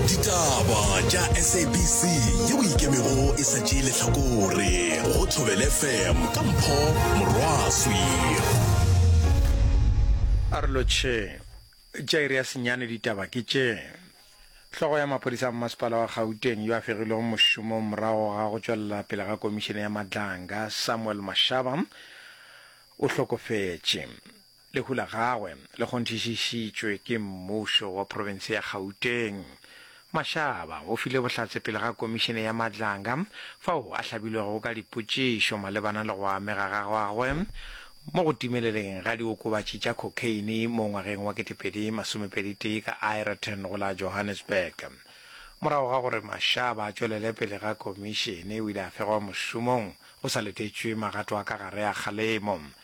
ditaba tša sabc ye o ikemego e sa tšee lehlakore go thobele fm ka mpho morwaswi a re lotšhe tša iri ya senyane ditaba ke tše Hlogo ya maphodisa a mmasepala wa Gauteng yo a fegilwego mošomong morago ga go tšwelela pele ga komišene ya Madlanga, Samuel Mashaba, o hlokofetše. Lehu la gagwe le kgonthišišitšwe ke mmušo wa profense ya Gauteng. Mashaba o file bohlatse pele ga komišene ya Madlanga fao a hlabilwego ka dipotšišo malebana le go amega ga gagwe mo go timeleleng ga diokobatši tša cocaine mo ngwageng wa 2021 ka Aeroton go la Johannesburg. Morago ga gore Mashaba a tšwelele pele ga komišene o ile a fegwa mošomong go sa letetšwe magato a ka gare a kgalemo.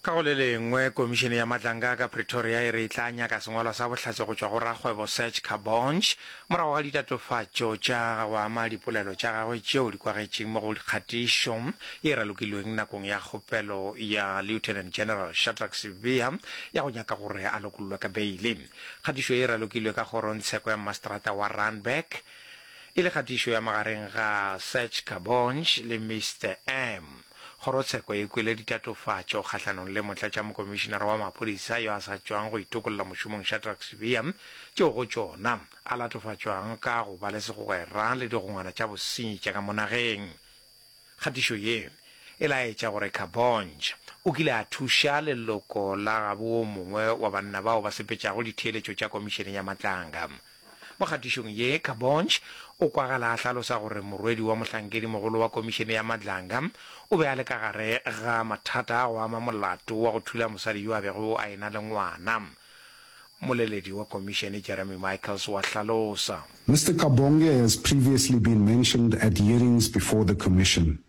Ka go le lengwe, Komišene ya Matlanga ka Pretoria e re e tla nyaka sengwalwa sa bohlatse go tšwa go rakgwebo Serge Kabonge morago ga ditatofatšo tša go ama dipolelo tša gagwe tšeo di kwagetšeng mo go kgatišo ye e ralokilweng nakong ya kgopelo ya Lieutenant General Shadrack Sibiya ya go nyaka gore a lokollwe ka beile. Kgatišo ye e ralokilwe ka kgorongtsheko ya mmaseterata wa Randburg e le kgatišo ya magareng ga Serge Kabonge le Mister M. Kgorotsheko e kwele ditatofatšo kgahlanong le Motlatšamokomišinara wa Maphodisa yo a sa tšwang go itokolla mošomong Shadrack Sibiya, tšeo go tšona a latofatšwago ka go ba le segwera le digongwana tša bosenyi tša ka mo nageng. Kgatišo ye e laetša gore Kabonj o kile a thuša leloko la gabo wo mongwe wa banna bao ba sepetšago ditheeletšo tša Komišene ya Matlanga. Mo kgatišong ye, Kabonge o kwagala a hlalosa gore morwedi wa mohlankedi-mogolo wa Komišene ya Madlanga o be a le ka gare ga mathata a go ama molato wa go thula mosadi yo a bego a e-na le ngwana. Moleledi wa Komišene Jeremy Michaels wa hlalosa. Mister Kabonge has previously been mentioned at hearings before the Commission.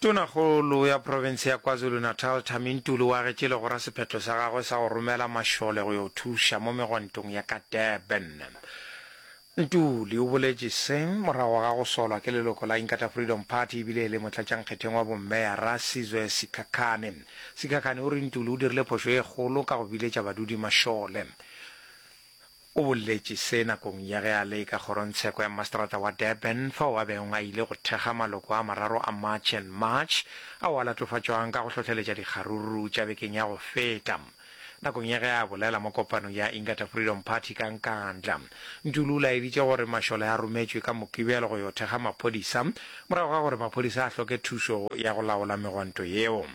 Tonakgolo ya profense ya KwaZulu-Natal, Thami Ntuli o agetše legora sephetho sa gagwe sa go romela mašole go yo thuša mo megwantong ya ka Durban. Ntuli o boletše se morago ga go solwa ke leloko la Inkatha Freedom Party e bile e le motlatšankgetheng wa bomeyara Sizwe Sikhakhane. Sikhakhane o re Ntuli o dirile phošo e kgolo ka go biletša badudi mašole. O boletše se nakong ya ge a le ka kgorontsheko ya mastrata wa Durban fao a bego a ile go thekga maloko a mararo a March and March ao a latofatšwang ka go hlohleletša dikgaruru tša bekeng ya go feta. Nakong ya ge a bolela mo kopanong ya Ingata Freedom Party ka Nkandla, Ntuli o laeditše gore mašole a rometšwe ka Mokibelo go yo thekga maphodisa morago ga gore maphodisa a hloke thušo ya go laola megwanto yeo.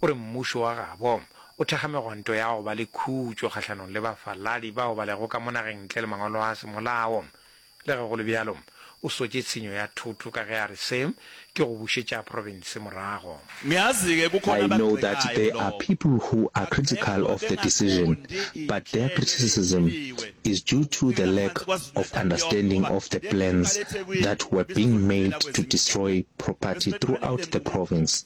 O re Mmušo wa gabo o thekga megwanto ya go ba le khutšo kgahlanong le bafaladi bao ba lego ka mo nageng ntle le mangwalo a semolao. Le ge go le bjalo, o sotše tshenyo ya thoto ka ge a re se ke go bušetša profense morago. I know that there are people who are critical of the decision, but their criticism is due to the lack of understanding of the plans that were being made to destroy property throughout the province.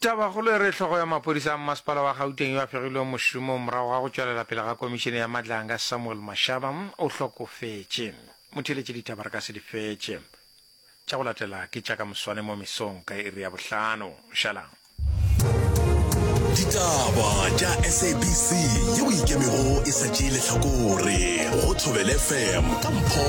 Tabakgolo e re hlogo ya maphodisa a mmasepala wa Gauteng yo a fegilweng mošomong morago ga go tšwelela pele ga komišene ya Madlanga Samuel Mashaba o hlokofetše. Mo theeletše ditaba re ka se di fetše. Tša go latela ke tša ka moswane mo mesong ka iri ya bohlano. Šalang. Ditaba tša SABC ye o ikemego e sa tšee lehlakore go Thobel FM ka mpho.